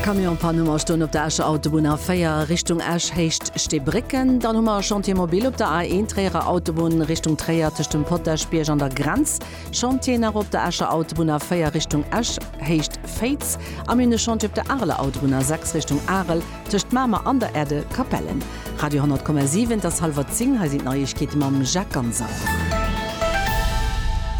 Camionspann hu mer stoen op der Escher Autobunn A4 Richtung Esch, Héicht Steebrécken. Dann hu mer e Chantier mobil op der A1 Tréierer Autobunn Richtung Tréier tëscht dem Potaschbierg an der Grenz. Chantier nach op der Escher Autobunn A4 Richtung Esch, Héicht Féiz. A mir hunn e Chantier op der Areler Autobunn A6 Richtung Arel. Tëscht Mamer an der Erde, Capellen. Radio 100,7 T'ass halwer 10, hei sinn d'Neiegkeete mam Jacques Ganser.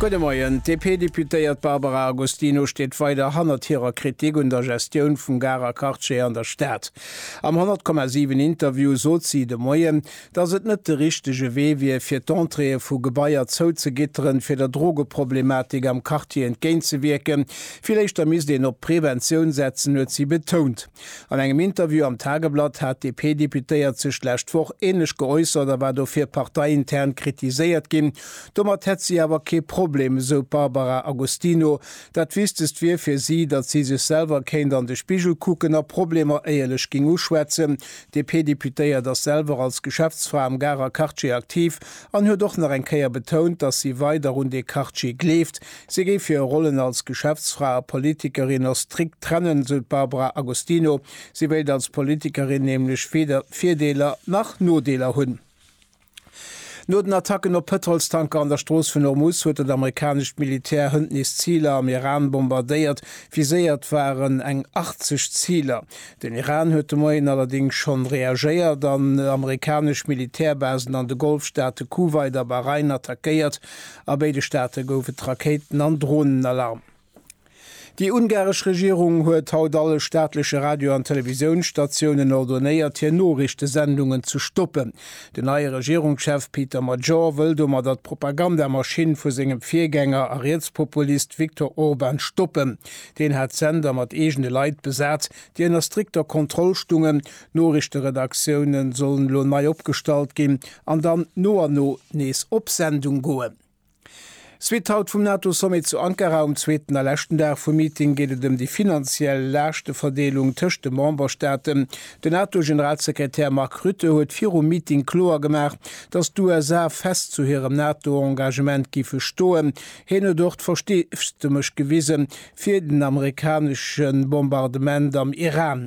Gudde Moien. D'DP-Deputéiert Barbara Agostino steet weider hannert hirer Kritik un der Gestioun vum Garer Quartier an der Stad. Am 100,7 Interview sot si de Moien, datt et net de richtege Wee wier, fir d'Entréeë vu Gebaier zouzegitteren, fir der Drogeproblematik am Quartier entgéintzewierken. Vill éischter misst een op d'Preventioun setzen, huet si betount. An engem Interview am Tageblatt hat d'DP-Deputéiert sech d'lescht Woch änlech geäussert a war dofir parteiintern kritiséiert ginn. Domat hätt si awer kee Problem, esou d'Barbara Agostino. Dat Wichtegst wier fir si, datt si sech selwer kéint an de Spigel kucken a Problemer éierlech géing uschwätzen. D'DP-Deputéiert ass selwer als Geschäftsfra am Garer Quartier aktiv an huet och nach eng Kéier betount, datt si weider un dee Quartier gleeft. Si géif hir Rollen als Geschäftsfra a Politikerin och strikt trennen, esou d'Barbara Agostino. Si wéilt als Politikerin nämlech weder Virdeeler nach Nodeeler hunn. No den Attacken op Pëtrolstanker an der Strooss vun Hormuz huet dat amerikanescht Militär hënt nees Ziler am Iran bombardéiert. Viséiert waren eng 80 Ziler. Den Iran huet de Moien allerdéngs schonn reagéiert an amerikanesch Militärbasen an de Golfstaate Kuwait a Bahrain attackéiert. A béide Staate gouf et Rakéiten an Dronenalarm. Déi ungaresch Regierung huet haut alle staatleche Radio an Televisiounsstatiounen ordonéiert, hir Noriichtesendungen ze stoppen. Den neie Regierungschef Peter Magyar wëll domadder d'Propagandamaschinn vu sengem Virgänger a Rietspopulist Viktor Orban stoppen. Deen hat d'Sender mat eegene Leit besat, déi ënner strikter Kontroll stungen, D'Noriichteredaktiounen sollen elo nei opgestallt ginn an dann no an no nees op Sendung goen. Suite haut vum NATO-Sommet zu Ankara, um zweeten a leschten Dag vum Meeting geet et ëm déi finanziell Laaschteverdeelung tëscht de Memberstaaten. Den NATO-Generalsekretär Mark Rutte huet virum Meeting kloer gemaach, datt d'USA fest zu hirem NATO-Engagement géife stoen. Hien huet och d'Versteesdemech gewise fir den amerikanesche Bombardement am Iran.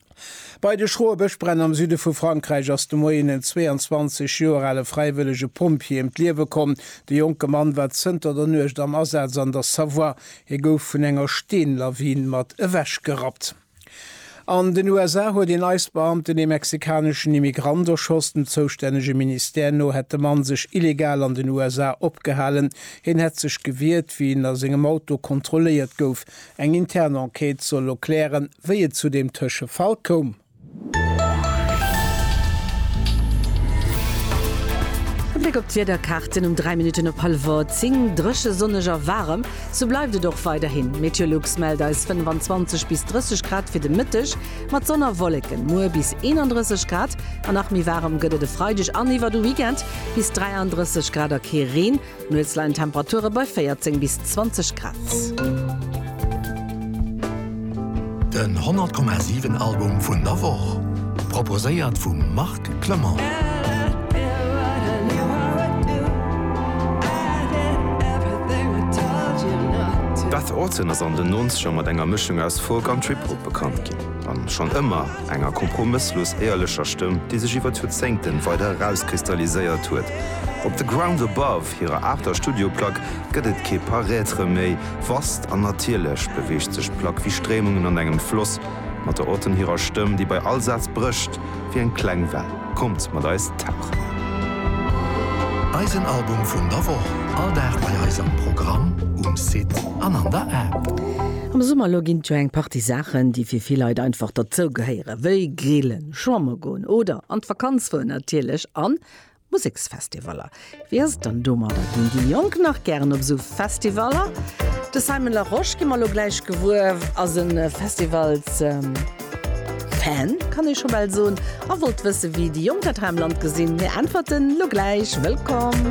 Bei de schroe Bëschbränn am Süde vu Frankräich ass de Moien en 22 Joer ale fräiwëllege Pompjee ëm d'Liewe komm. De jonke Mann war zënter der Nuecht am Asaz an der Savoie. Hie gouf vun enger Steenlawin mat ewechgerappt. An den USA huet een ICE-Beamten ee mexikaneschen Immigrant erschoss. Dem zoustännege Ministère no hätt de Mann sech illegal an den USA opgehalen. Hien hätt sech gewiert, wéi en a sengem Auto kontrolléiert gouf. Eng intern Enquête soll lo klären, wéi et zu deem Tëschefall koum. E Bléck op d'Wiederkaarten um 3 Minutten op hallwer 10, Dréche, sonneg a waarem, sou bleift et och weiderhin. Meteolux mellt eis 25 bis 30 Grad fir de Mëtteg, mat Sonn a Wolleken. Muer bis 31 Grad an nach méi waarem gëtt et e Freideg an iwwer de Weekend, bis 33 Grad a kee Reen. Nuets leien d'Temperature bei 14 bis 20 Grad. Den 100,7 Album vun der Woch proposéiert vum Marc Clement. Beth Orton ass an den Nonzeger mat enger Mëschung aus Folk an Trip-Hop bekannt ginn, an schonn ëmmer. Enger kompromësslos éierlecher Stëmm, déi sech iwwer d'Joerzéngten weider erauskristalliséiert huet. Op The Ground Above, hirer aachter Studioplack, gëtt et kee Paraître méi. Vast an natierlech beweegt sech d'Plack wéi Stréimungen an engem Floss, mat der Autonne hirer Stëmm, déi bei all Saz brécht wéi eng kleng Well. Kommt mat eis tauchen! Eisen Album vun der Woch, all Dag bei eis am Programm, um Site an an der App. Am Summer elo ginn et jo eng Partie Saachen, déi fir vill Leit einfach derzougehéieren, wéi grillen, schwamme goen oder an d'Vakanz fueren natierlech an Museksfestivaller. Wéi ass et dann domadder, ginn déi Jonk nach gären op esou Festivaller? De Simon Larosche gi mer elo gläich gewuer. Ass e Festivals-Fan, kann ee scho bal soen, a wollt wëssen, wéi déi Jonk dat hei am Land gesinn. Hir Äntwerten elo gläich. Wëllkomm!